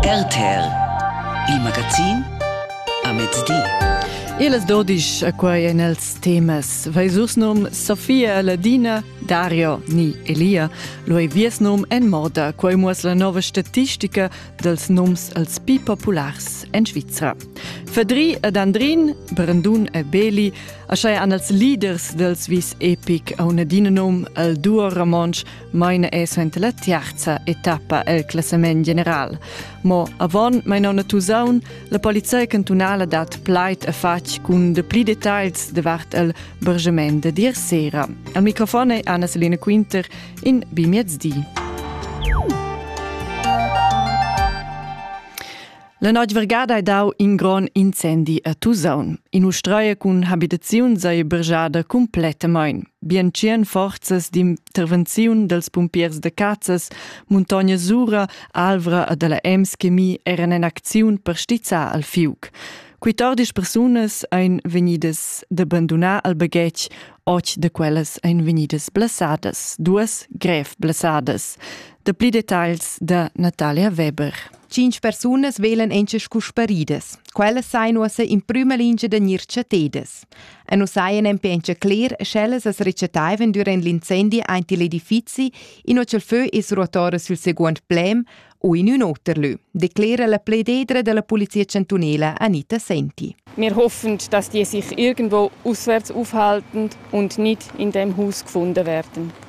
RTL Il magazin a mezdi. Iles dodisch a quai en els temas. Veisurs num Sofia Ladina, Dario ni Elia. Lui vies num en moda, quai muos la nova statistica dels nums els pi populars en Svizra. Fedri ed Andrin, Brandun e Beli, asai an els leaders dels vis epic a una din num el duo romonsch Meine è suenter la tiarza etappa el classament general. Mo avon mein on a Tusaun, la polizia cantunala dat plaid a fatg cun de pli details davart el bergement de dir sera. Al microfon è Anna-Selina Quinter in bimiezdi. La noig vergada hai dau in gron incendi a Tusaun. In ustraia cun habitaziun sei bergiada complettamain. Bien tschien forzas d'intervenziun dels pumpiers de Cazzas, Montagna Sura, Alvra e della Ems chemie eran en acziun per stizzar al fiuc. Quittordisch persunas ein vegnidas d'abandonar al baghetg, och de quellas ein vegnidas blasadas, duas grev blasadas. De pli detagls da Natalia Weber. Tschintg persunas velan encha scu sparidas. Quellas sain uossa in prüma lingia da gnir chattedas. E nu saja nempe encha cler, sch'ellas as rechattaivan dürant l'incendi aint il edifizi, inua cha'l fö es ruotora sül seguond plem u in ün oter lö, declera la plededra da la Polizia chantunela Anita Senti. Wir hoffen, dass die sich irgendwo auswärts aufhalten und nicht in dem Haus gefunden werden.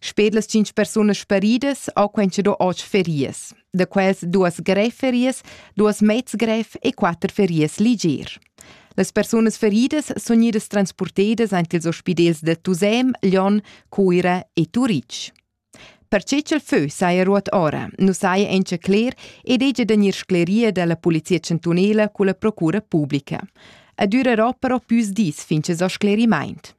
Sper las cinc persunas sparidas ha quentscha do otg ferias. Da quels duas grev ferias, duas mezs grev e quatter ferias liger. Las persunas feridas sun idas transportedas aint ils ospidels da Tusem, Lyon, Cuira e Turitg. Perche ch'el fö saja ruot ora, nu saja encha cler ed hegia da gnir scleria dalla Polizia chantunela culla procura publica. Ed ürerà però püs dis fin cha s'ho sclerimaint.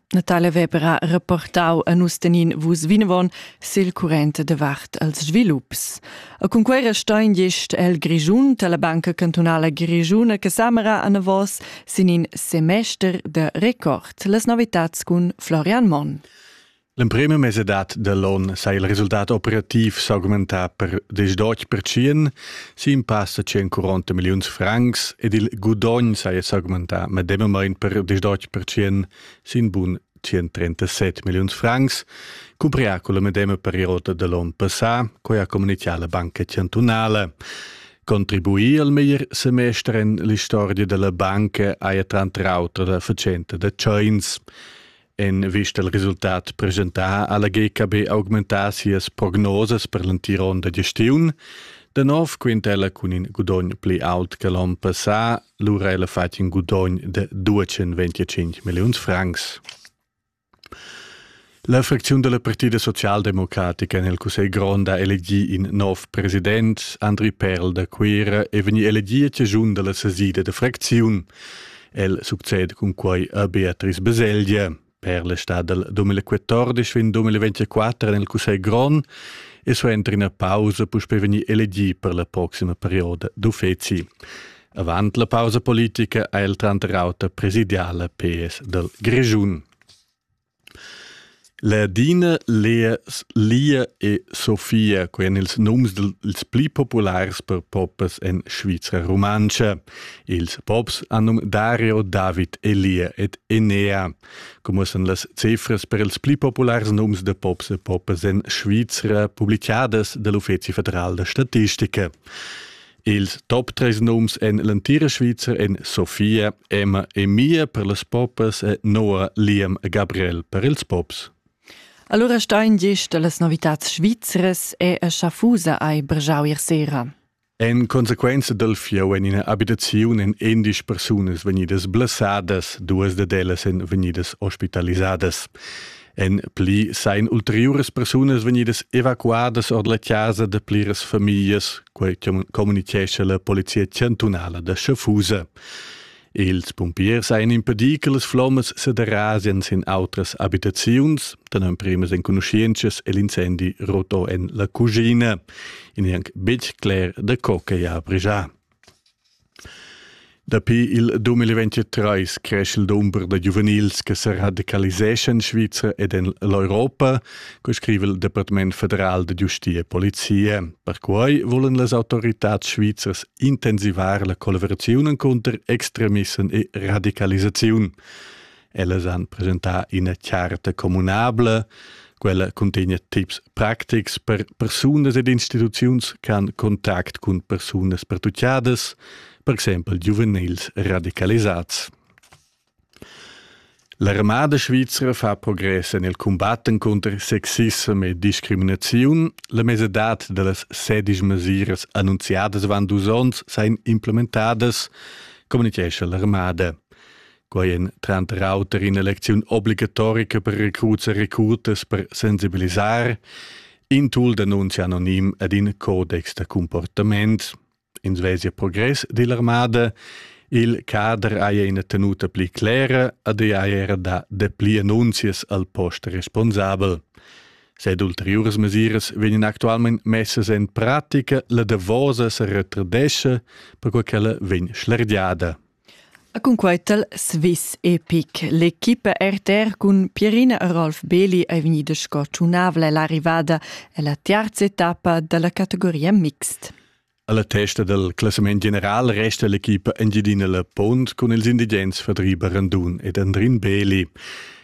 Natalia Weber ha reportau a nus tenin vus vinavon sil current de vart als svilups. A cun quei restein gest el Grischun alla Banca Cantunala Grischuna che samera a navos sin in semester de record las novitats cun Florian Monn. L'emprema mesedad dell'on sa il resultat operativ s'augmentà per 18%, Sin passa 140 milliuns francs ed il gudogn saja s'augmentà medemamain per 18% sin bun 137 milliuns francs, cumprià con la medema periode da l'on passà, quai ha communichà la Banca chantunala. Contribuì al meglier semester en l'istorgia da la banca haja tranter auter la fatschenta da tschains. En vista al resultat presentà ha la GKB augmentà sias prognosas per l'entira onda gestiun. Da nov quinta ella cun in gudogn pli aut che l'onn passà, lura ella fatg in gudogn de 225 milliuns francs. La fracziun della Partida Socialdemocratica nel Cussegl Grond ha elegì in nov president, Andri Perl da Cuira, e vegni elegì a cigiun della sesida de fracziun. El succede cun quai a Beatrice Beselgia per l'estat del 2014 fin 2024 nel Cussegl Grond e suenter ina pausa puspei vegnir elegì per la proxima perioda d'uffeci. Avant la pausa politica ha el tranter auter presidiala PS del Grischun. Ladina, Lea, Lia e Sofia, quei ein ils nums dils pli populars per popas en Svizra rumantscha. Ils pops han num Dario, David, Elia ed Enea. Comuossan las cifras per ils pli populars nums da pops e popas en Svizra publicadas dall'Uffeci federal da statistica. Ils top tres nums en l'entira Svizra en Sofia, Emma e Mia per las popas e Noah Liam e Gabriel per ils pops. Allora stein gest da las novitads svizras è a Schaffusa ai brgiau ir sera. En consequenza dal fieu en ina abitaziun en endisch persunas vegnidas blessadas, duas da ellas en vegnidas ospitalisadas. En pli sain ulteriuras persunas vegnidas evacuadas ord la chasa da pliras famiglias, quai communitgescha la polizia chantunala da Schaffhausen. Ils pumpiers ein impedì che las flommas se derasien sin outras abitaziuns, da emprimas enconuscienschas e l'incendi rotò en la cucina. In è anche betg cler da co che ha brigià. Dapi il 2023 cresce il dumber da giuvenils che sa radicaliseschan en Svizra ed en l'Europa, co scrive il Departament federal da giustia e polizia. Perquai volan las autoritads svizras intensivar la collaboraziun cunter extremissem e radicalisaziun. Ellas han presentà ina charta communabla, quella cuntegna tips practics per persunas ed instituziuns ch'han contact cun persunas pertuccadas, per exempel giuvenils radicalisads. L'armada svizra fa progress en il combat cunter sexism e discriminaziun. La mesadad da las sedisch mesiras annunziadas avant dus onns sain implementadas, communitgescha l'armada. Quai en tranter auter in'elecziun obligatorica per recruts e recrutas per sensibilisar, in tool d'annunzi anonim ed in codex da comportament. Ins vesia progress dill'armada, il cader haja ina tenuta pli clera ed ei haja era da dapli annunzias al post responsabel. Sed ulteriuras mesiras vegnan actualmein messas en pratica, la davosa se retradesce, perquai ch'ella vegn schlergiada. E cun quei tal Swiss Epic. L'equipa RTR cun Pierina e Rolf Beli ei vegnida sco tunavla ell'arrivada ella tiarza etappa dalla categoria mixed. Alla testa del classament general resta l'equipa Engiadina La Pont cun ils indigents Fadriba Randun ed Andrin Beli.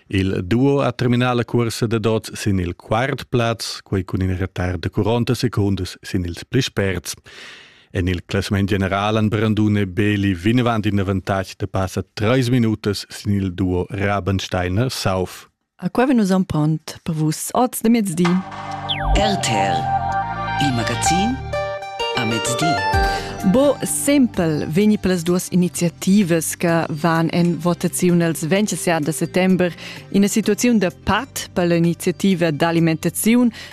Il duo ha terminà la cursa da dot sin il quart plaz, quei cun in retard de 40 secundas sin ils pli sperts. En il classament general han Brandun e Beli vinavant in avantatg da passa treis minutas sin il duo Rabensteiner-Sauf. A qua vegn nus empont per vus oz de mezdi. RTL, il magazin a mezdi. Bo sempel vegni per las duas iniziativas che van en votaziun els 27 de settembre in una situazione da pat per l'iniziativa d'alimentazione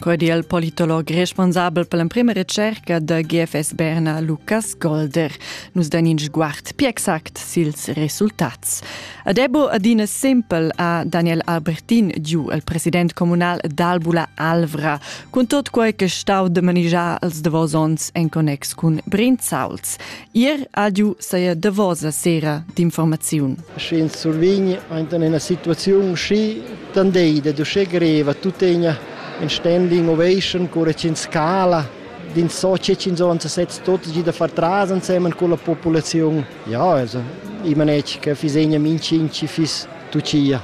Quei di il politolog responsabel per l'emprema ricerca da GFS Berna, Lukas Golder, nus den in sguard pi exact sils resultats. Adebo adina simpel a Daniel Albertin giu il president comunal d'Albula Alvra, cun tot quei che stau de manigiar als davos ons en connex cun Brinzauls. Ir adiu saja davosa sera d'informaziun. Sche ins survegn in ina situaziun schi tandei da uschè greva tuttegna in standing ovation cura ch'ins scala din so che ins on se setz tutti da far tras insieme con la popolazione ja also i manec che fi segna min cinci fis tucia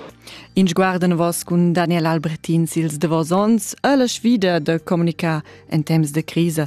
In sguarden vos cun Daniel Albretin sils davos ons e la sfida da comunicar en temps de crisa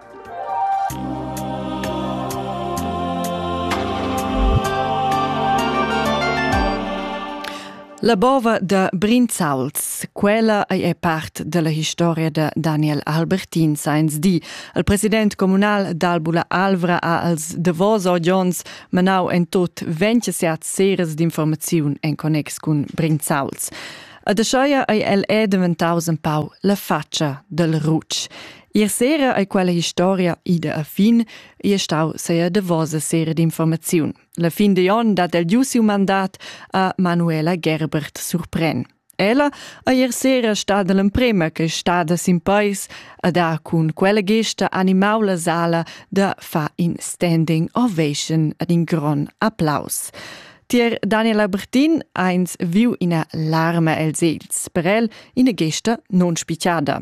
La bova da Brinzauls, quella ei è part della historia da Daniel Albertin Sainz di. Il president comunal d'Albula Alvra ha als Devoso Jones manau en tot 27 seres d'informaziun en connex cun Brinzauls. A de Scheia ei el è daventaus un pau la faccia del Rucc. Ier sera ei quella historia ida a fin, e stau seia davosa sera d'informaziun. La fin de on dat el giu siu mandat a Manuela Gerbert surpren. Ella a ier sera stada l'emprema che stada sin pais a da cun quella gesta animau la sala da fa in standing ovation ad in gron applaus. Tier Daniela Bertin eins viu ina larma els els, per el ina gesta non spicciada.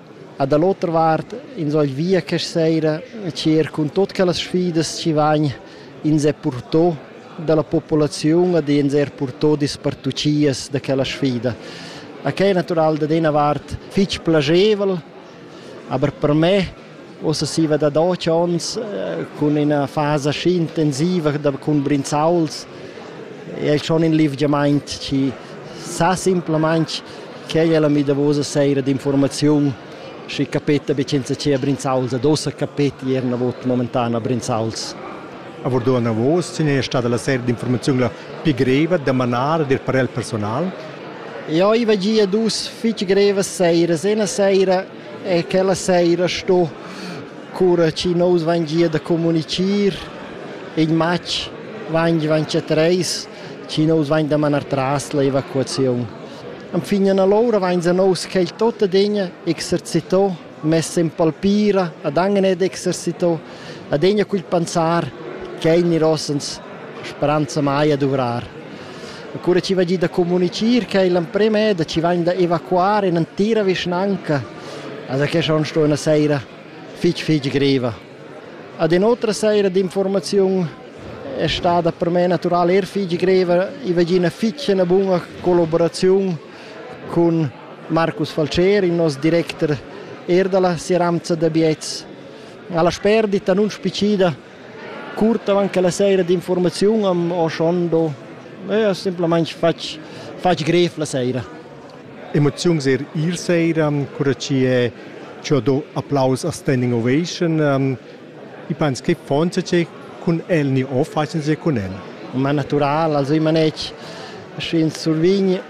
E da l'otra vart ins vegl via questa seira e tschert cun tut quellas sfidas chi vain ins er purtò dalla populaziun ed ins er purtò dispartuchias da quella sfida. E quai è natural dad ina vart fitg plagevel, aber per me Ussa siva da doc ons cun ina fasa schi intensiva da cun brinzauls è schon in livgiamaint chi sa simplamaing quai è la mi davosa seira d'informaziun schi capeta be senza che brinzauls ad ossa capeti er na vot momentan a brinzauls. Avurdo anavos sin è stada la seira d'informaziun la pi greva da manar ed ir per el personal. Ja, i va gia dus fitg grevas seiras. Ena seira e quella seira sto cura chi nous vain gia da comunichir in matg vain vaincha treis chi nous vain da manar tras l'evacuaziun. Enfin an allora vain a nous quel tot adegna exercito, mess in palpira, ad angen ed exercito, adegna cul panzar, ch'el gnir ossens speranza mai a duvrar. E cura chi va giü da comunichir cha igl amprem è da chi vain da evacuar in'entira vischnanca, as da que schon sto üna saira fich fich griva. Ad ün otra saira d'informaziun è stada per me natural eir fich griva, i va giü üna fich üna buna collaboraziun cun Marcus Falceri, il nos directer eir da la Seramza da Biets. Alla sperdita nun spicida Curt avant che la sera d'informaziun am ho schondo e ho simplamaing fatg fatg grev la sera. Emoziuns er ir sera, cura chi è chi ho do applaus a Standing Ovation. I pens che fonza che cun el ni ho facian se cun el. Ma natural, also ich meine, ich schön survign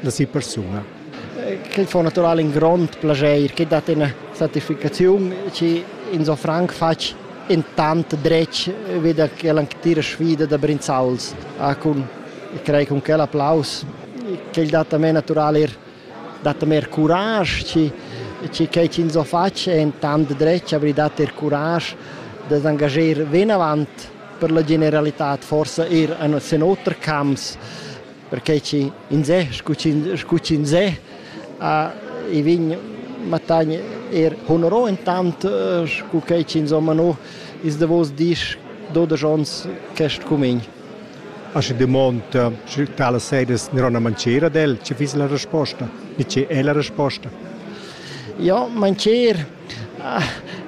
da sia persuna. Quel fa natural in grond plaschair che dat ina satisfacziun che in so franc fatg in tant dretg wie der gelanktire Schwede der Brinzauls ha cun ich kriege con quel applaus quel dat a me natural er dat mer courage ci ci che ci so faccio è in tant dretg avrei dat er courage da engagier ven avant per la generalità forse er in sen oter camps perquei chi insè scu scu chinsè ha i vegn mattagn er honoro intant scu quei chi insomma no is davos dis dodesch ons quest cumegn. Aschi dumonda, sche tala sedes nirona mancera del, che fiss la resposta? Ni che è la resposta? Ja, mancher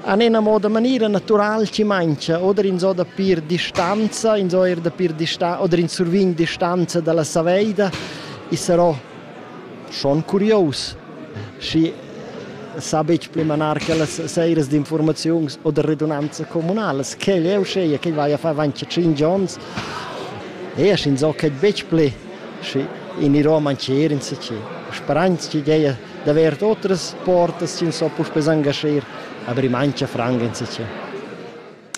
an ena moda maniera natural ci mangia oder ins ho da pir distanza ins ho er da pir distanza oder ins survign distanza dalla saveida e sarò schon curios schi sa betg pli manar quellas seiras d'informaziuns o da redunanza comunalas quel è uscheia che vai a far avanti 5 onns e ins so che betg pli schi in i Roma ci er in si ci speranz ci geia d'avair otras portas ins so puspè s'engascher, aber ich mancha franc insitge.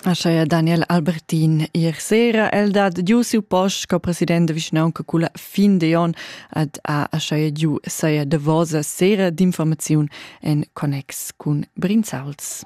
Ascheia Daniel Albertin ier sera el dat giu siu post co president de vischnaunca culla fin de on ad a ascheia giu saia davosa sera d'informaziun en connex cun Brinzauls.